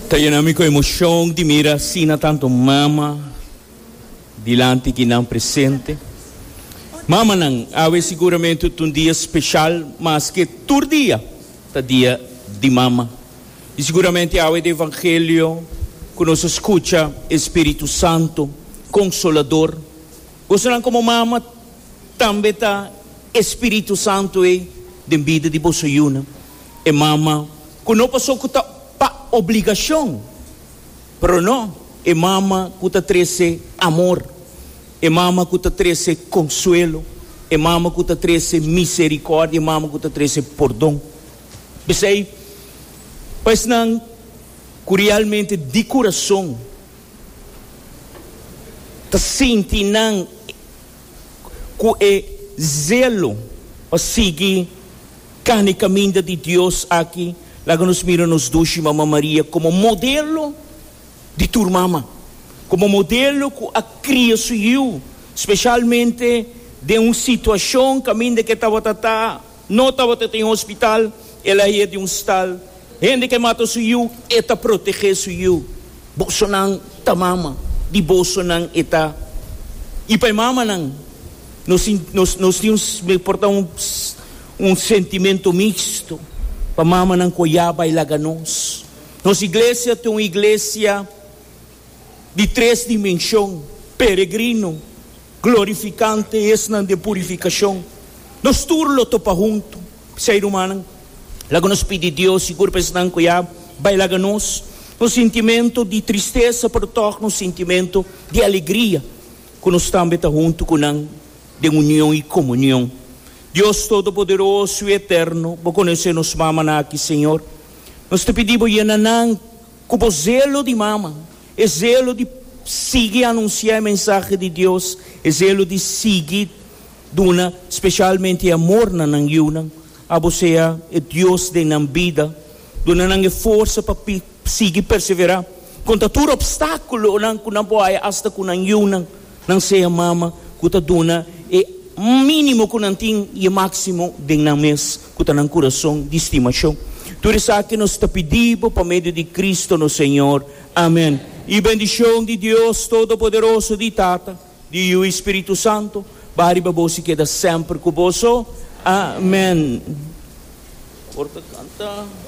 Ta yena mi ku emocion di mira asina tantu mama dilanti ki nan presente. Mamanan, awe siguramente ta un dia special maske tur dia ta dia di mama. I siguramente awe di evangelio ku nos a skucha e spiritu santu konsolador. Boso nan komo mama tambe ta e spiritu santu ei den bida di boso yuna. E mama ku no pasó ku ta pa obligashon, pero no, e mama ku ta trese amor, e mama ku ta trese konsuelo, e mama ku ta trese miserikòrdia, e mama ku ta trese pordon. P'esei, pa esnan ku realmente di kurason ta sinti nan ku e zelo pa sigui Can e caminda di Dios aki laga nos mira nos dushi Mama Maria como modelo di tur mama, como modelo cu a cria su yiu, specialmente den un situacion caminda cu e tabata ta, no tabata ta en hospital, el a haña di un stal Hende ke mata su yu e ta protegé su yu. Bosonan ta mama, di bosonan e ta. I pa e mamanan, nos tin nos nos tin un me por ta un un sentimento mixto pa mamanan ku a ya bai laga nos. Nos iglesia ta un iglesia. di tres dimenshon, peregrino, glorifikante, esnan den purifikashon. Nos tur lo topa huntu. P'esei, rumannan, laga nos pidi Dios sigur pa esnan ku ya bai laga nos, nos sintimentu di tristesa por tòg nos sintimentu di alegria ku nos tambe ta huntu ku nan den union i komunion. Dios Todopoderoso i Eterno, bo konosé nos mamanan aki, Señor. Nos ta pidi bo yena nan Ku bo zelo di mama, e zelo di sigui anunsiá e mensahe di Dios, e zelo di sigui duna spesialmente e amor na nan yunan. Abo sea e Dios den nan bida, duna nan e forsa pa sigui perseverá kontra tur opstákulonan ku nan por haya asta ku nan yunan, nan sea mama ku ta duna e mínimo ku nan tin i e máksimo den nan mes. Ku ta nan kurason di stimashon. Tur esaki nos ta pidi bo pa medio di Kristu no Señor. Amen. E bendishon di Dios Todopoderoso, di Tata, di Yu i Spiritu Santo, baha riba bos i keda semper ku boso. Amen. Por ta kanta.